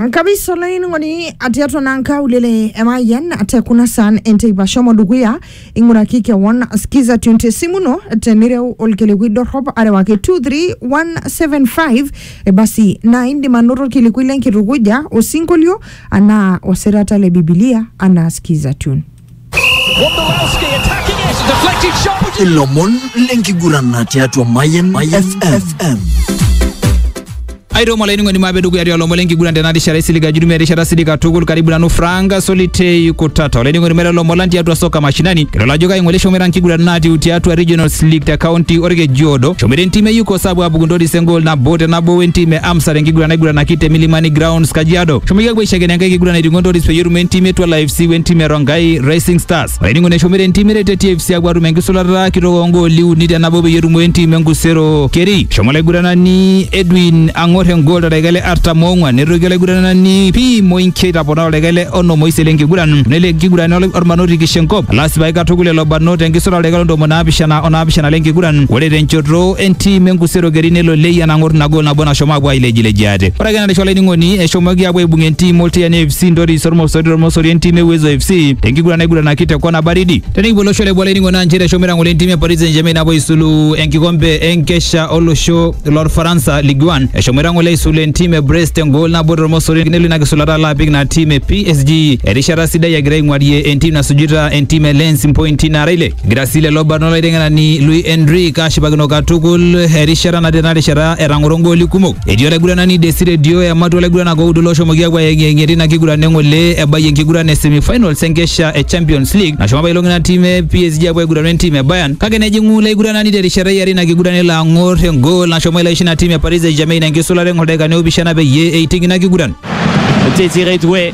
nkabisa olainining'oni atiatua naa nkaulele emayian te kuna saan enteipa shomo dukuya ing'uraki kewon skiza tune te simu ino tenireu olkilikuai dorrop arewaki 23175 e basi naa indim anoto olkilikuai lenkitukuja osinkolio anaa osirata le bibilia anaa skiza tune Wondolowski attacking it. Deflected shot. ilomon lenkiguran tiatua Mayan FM. aitomo olainining'oni maape dukuya tialo lomon lenkiguran tena rishata isilig ajudumia erishata silig katukul karibu nanu franka solitei kutata olainining'oni mera lomon lang tiatua soka mashinani kitol ajo kaing'ole shomera nkiguran naatiu tiatua regionals league te kaunti orkejiodo shomera entim e yukos apuo apuku ntoris engol nabo te nabo wentim e amsa tenkiguran naiguranaki te milimani grounds kajiado shomoki apuo aishakena enkae kiguran aiting'o ntoris peyie etum entim etua live siwe ntimi erongai rising stars olainingo neshomire ntimi rete tfc apuo atum enkisulata kitok ongooli uni tenabo peyie etumo entim enkusero keri shomo olaiguranani edwin ang'or engol toldaika le artam ong'uan netoki olaiguranani pi moinki aitapona toldaika le onom oisiet lenkiguran nelo enkiguran ol- ormanoti kishenkop lasipai katukul lelo barnot tenkisulata oldaika le ntomoni naapishana onaapishana lenkiguran ore tenchoto entim enkusero keri nelo leyian ang'or ina gol nabo nashomo apuo ailejilejia ate Kake narisho olainining'oni eshomoki apuo aibung entim Oltiani FC Ntoris Ormosori Ormosori entim e Uwezo FC tenkiguran naiguranaki te kona baridi. Tenikipuo olosho le Bolaining'o naa nchere eshomo aitang'ole entim e Paris Saint-Germain apuo aisulu enkikombe enkesha olosho lorfaransa Ligue 1. Eshomo aitang'ole aisulu entim e Brest engol nabo tormosori nelo ina kisulata alo apik ina tim e PSG erishata sidai egira aing'warie entim nasujita entim e Lens mpointi naara ile. Egira sii lelo barnot olaiteng'enani Luis Enrique ashipakino katukul erishata natii ena rishata etang'oro igooli kumok. Etii olaiguranani Desire Dio ematua olaiguranak oudo looshomoki aapuo ayeng'iyeng'ie tina kiguran eng'ole ebayie enkiguran e semifinals enkesha e Champions League nashomo apailong ina tim e PSG apuo aiguranu entim e Bayern kake nejing'u ilo aiguranani terishata e are ina kiguran elo ang'or engool nashomo elo aisho ina tim e Paris St-Germain enkisulata eng'or ildaikani oopishana peyie eiting ina kiguran. Desire Doué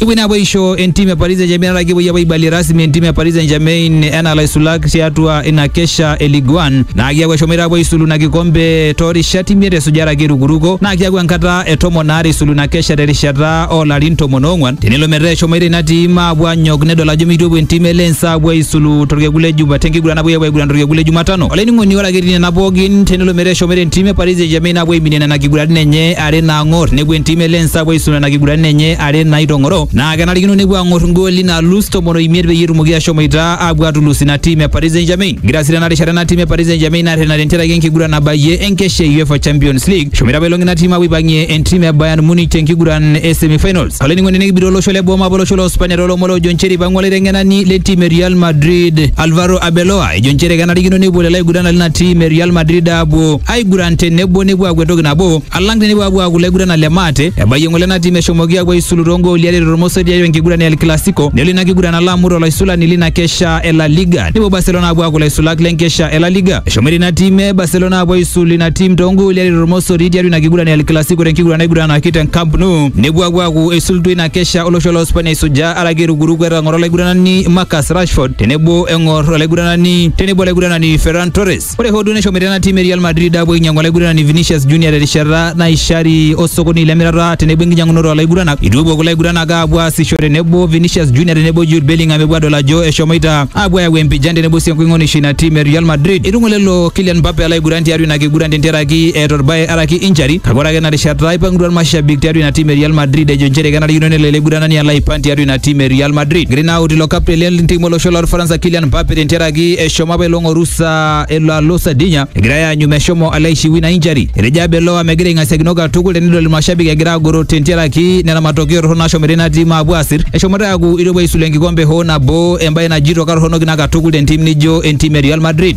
Ibwina aboisho entimu e Paris Saint-Germain nara kipuoi apa aibalie rasmi entimu e Paris Saint-Germain enaa laisulak tiatua ina kesha e Ligue 1 naa kiaku eshomoita apuo aisulu ina kikombe toorishat imiet esujare ake irukuruko naa kiaku enkata e tomon aare isulu ina kesha terishata oolarin tomon oong'wan tenelo metaa eshomoita ina tiim aapuo anyok nedol ajo meitopuo entiim e Lens aapuo aisulu torkekun le Juma tenkiguran napuoi apuo aiguran torkekun le Jumatano olainining'oni ore ake etii nena pookin tenelo metaa eshomoita entiim e Paris Saint-Germain aapuo aiminie nena kiguratin enye are naang'or nepuo entim e Lens apuo aisum nena kiguranin enye are naitong'oro naa kenarikino nepuo aang'or igooli naalus tomon oimiet peyie etumoki ashomoita apuo atulus ina tim e Paris Saint-Germain. Egira sii tena rishata ena tim e Paris Saint-Germain arrena tentiaraki enkiguran nabayie enkesha e UEFA Champions League. Eshomoita apailong ina tim apuo aipang'ie entim e Bayern Munich tenkiguran e semi-finals. Olainining'oni nikibira olosho le boo maape olosho le Uspania toolomon oojo nchere eipang'ua olaiteng'enani le ntim e Real Madrid Alvaro Arbeloa ejo nchere kenarikino nepuo lelo aiguranani lina tim e Real Madrid apuo aiguran tenebo nepuo aaku entoki nabo alang tenepuo apuo aaku laiguranak le maate. Ebayie ng'ole ena tim eshomoki apuo aisulu too gooli are tormosor tiatua enkiguran e El Clasico nelo ina kiguran alo amut olaisulani lina kesha e La Liga nepuo Barcelona apuo aaku laisulak le nkesha e La Liga. Eshomoita ina tim e Barcelona apuo aisul ina tim too gooli are tormosori tiatua ina kiguran e El Clasico te nkiguran naiguranaki te Camp Nou nepuo apuo aaku eisulutua ina kesha olosho loo Spania eisujaa araki erukuruku etang'oro olaiguranani Marcus Rashford tenebo eng'or olaiguranani tenebo olaiguranani Ferran Torres. Ore hoo duo neshomoita ena tim e Real Madrid aapuo ainyang'u olaiguranani Vinicius Junior terishata naishari osokoni lemirata tenebo enkinyang'unoto oolaiguranak. Eitu epuo kulo aiguranak aapuo aasisho tenebo Vinicius Junior tenebo Jude Bellingham epuo adol ajo eshomoita aapuo ayau empijan tenebo sii enkoing'onisho ina tim e Real Madrid. Eitu ng'olelo Kylian Mbappe alo aiguran tiatua ina kiguran tentiaraki eeta orbae araki injury kake ore ake ina rishata eipangutua irmashabik tiatua ina tim e Real Madrid ejo nchere kenarikino nelo ele aiguranani alo aipang tiatua ina tim e Real Madrid. Egirai naa aut ilo captain le ntim olosho lorfaransa Kylian Mbappe tentiaraki Agi eshomo apa elo ng'oru saa elo alo Sardinia egirai aanyu meshomo alo aishiwi na injury. Etejo Arbeloa megira aing'asiakino katukul tenidol ilmashabik egira agoro tentiaraki nena matokeo torrono nashomoita ina tim aapuo aasir. Eshomoita aaku eitu epuo aisulu enkikombe hoo nabo embae najito katorronok ina katukul tentim nijo entim e Real Madrid.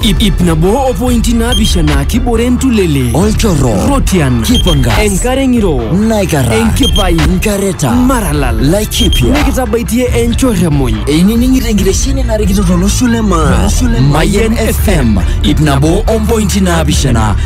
Ip, ip nabo o pointi naapishana kibore entulele Olchorro. Rotian Kipangas. Enkare ng'iro Naikarra. Enkipai Nkareta. Maralal kipya nikitabaitie enchoremony einining'ito enkitesheni narikito tolosho le maa mayen fm ip nabo ompointi naapishana